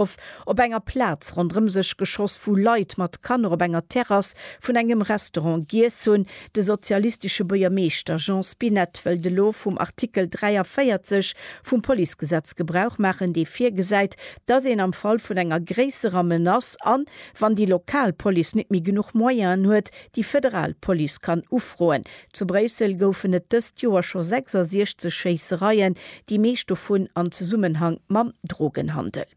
of op enger Plaz ronderëm sech geschoss, wou Leit mat Kanner op enger Terrass vun engem Restaurant giess hunn. De sozialistesche Buergermeeschter Jean Spinett wëllt elo vum Artikel 43 vum Policegesetz Gebrauch maachen, dee virgesäit, datt een am Fall vun enger gréisserer Menace an, wann déi lokal Police net méi genuch Moyenen huet, déi federal Police kann ufroen, Zu Bréissel goufen et dëst Joer scho 66 Schéissereien, déi meescht dovun am Zesummenhang mam Drogenhandel.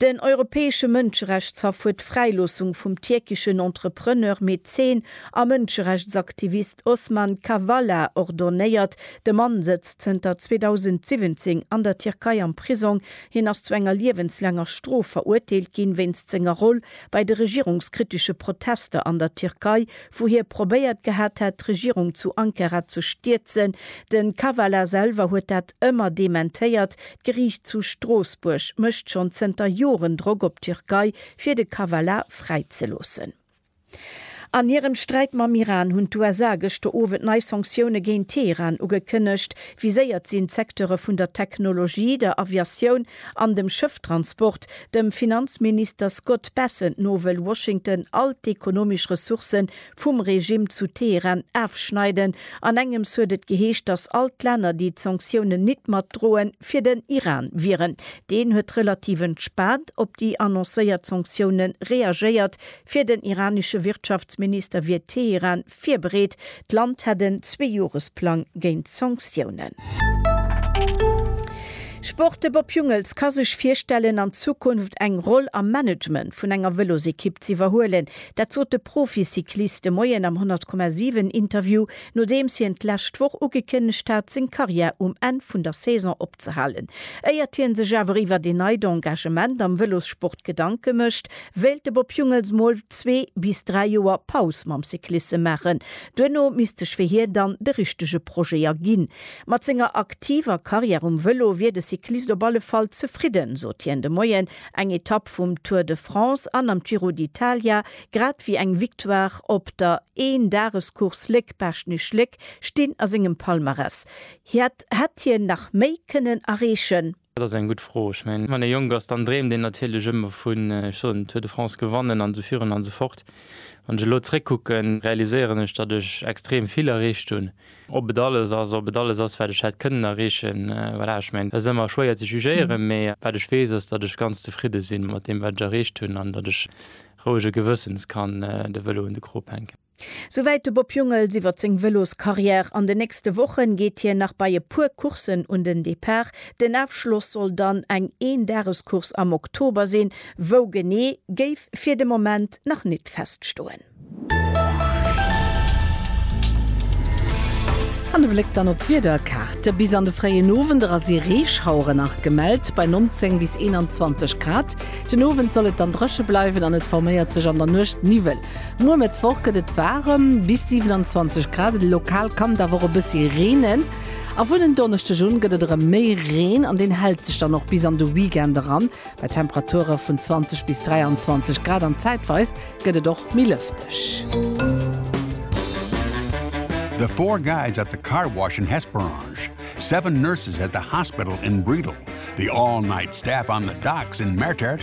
Den Europäesche Mënscherechtshaff huet d'Fräiloossung vum tierkeschen Entrepreneur, Mäzen a Mënscherechtsaktivist Osman Kavala ordonéiert. De Mann sëtzt zënter 2017 an der Tierkei am Prisong. Hien ass zu enger liewenslaanger Strof verurteelt ginn, wéinst senger Roll bei de regierungskritesche Protester an der Tierkei wou hie probéiert gehat hätt, d'Regierung zu Ankara ze stierzen. De Kavala selwer huet dat ëmmer dementéiert. D'Geriicht zu Stroossbuerg mécht schonn zënter Joren Drock op d'Türkei, fir de Kavala fräizeloossen. An hirem Sträit mam Iran hunn d'USA gëschter Owend nei Sanktioune géint Teheran ugekënnegt. Viséiert sinn d'Secteure vun der Technologie, der Aviatioun, An dem Schëfftransport, dem Finanzminister Scott Bessent no wëll Washington all d'ekonomesch Ressourcë vum Regime zu Teheran afschneiden. An engems huet et geheescht, datt all d'Länner déi d'Sanktiounen nit mat droe fir den Iran wieren. Deen huet relativ entspaant op déi annoncéiert Sanktiounen reagéiert. Fir den iranesche Wirtschaftsminister wier Teheran virbereet, d'Land hätt en Zweejoeresplang géint Sanktiounen. Sport, De Bob Jungels ka sech virstellen, an Zukunft eng Roll am Management vun enger Vëlosekipp z'iwwerhuelen. Dat sot de Proficyclist de Moien am 100,7 Interview, nodeems hien d'lescht Woch ugekënnegt hat, seng Karriär um Enn vun der Saison opzehalen. Éiert hie sech awer iwwert een neit Engagement am Vëlossport Gedanke mécht, wéilt de Bob Jungels mol zwee bis dräi Joer Paus mam Cyclisse maachen, duerno misst sech fir hie dann de richtege Projet erginn. Mat senger aktiver Karriär um Vëlo wier de Cyclist op alle Fall zefridden, sot hien de Moien. Eng Etapp vum Tour de France an am Giro d'Italia, grad ewéi eng Victoire op der Een-Dages-Course Léck-Baaschtnech-Léck stinn a sengem Palmarès. Hiert hätt hien nach méi kënnen erreechen. Dat ass eng gutt Fro. Ech mengen, wann ee jonk ass, dann dreemt een natierlech ëmmer vun, ech soen, Tour de France gewannen an esou virun an esou fort. Wann ech elo zréckkucken, realiséieren ech, datt ech extrem vill erreecht hunn. Ob et alles ass, ob et alles ass, wat ech hätt kënnen erreechen, voilà, ech mengen, dat ass ëmmer schwéier ze jugéieren. Mee wat ech weess, ass, datt ech ganz zefridde si mat deem, wat ech erreecht hunn an datt ech rouege Gewëssens kann de Vëlo un de Krop hänken. Souwäit de Bob Jungels iwwer seng Vëloscarrière. An den nächste Wochen geet hien nach bei e puer Courssen un den Depart. Den Afschloss soll dann eng Eendagescourse am Oktober sinn, wou genee géif fir de Moment nach nit feststoen. An e Bléck dann op d'Wiederkaart. Bis an de fréien Owend era si Reeschauere nach gemellt, bei 19 bis 21 Grad. Den Owend soll et dann dréche bleiwen an et forméiert sech an der Nuecht Niwwel. Muer Mëttwoch gëtt et waarem, bis 27 Grad, lokal kann et awer och e bëssi reenen. A vun en Donneschdeg un gëtt et erëm méi Reen an deen hält sech dann och bis an de Weekend eran, bei Temperature vun 20 bis 23 Grad an zäitweis gëtt et och méi lëfteg. The four guys at the car wash in Hesperange, seven nurses at the hospital in Bredal, the all-night staff on the docks in Mertert,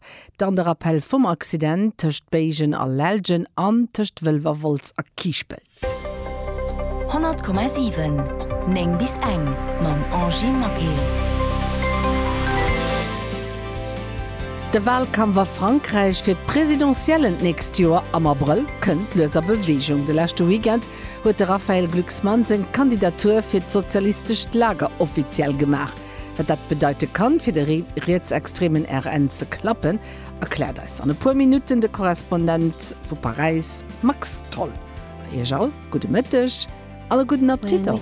Dann de Rappell vum Accident tëscht Béigen a Lellgen an tëscht Wëlwerwolz a Kiischpelt. 100,7, 9 bis eng, mam Angie Maquet. De Walkampf a Frankräich fir d'Presidentiellen d'nächst Joer am Abrëll kënnt lues a Beweegung. De leschte Weekend huet de Raphaël Glucksmann seng Kandidatur fir d'sozialistescht Lager offiziell gemaach. Wat dat bedeite kann, fir de rietsextremen RN ze klappen, erkläert eis an e puer Minutten de Korrespondent vu Paräis Max Tholl. A Iech all gudde Mëtteg an e gudden Appetit och.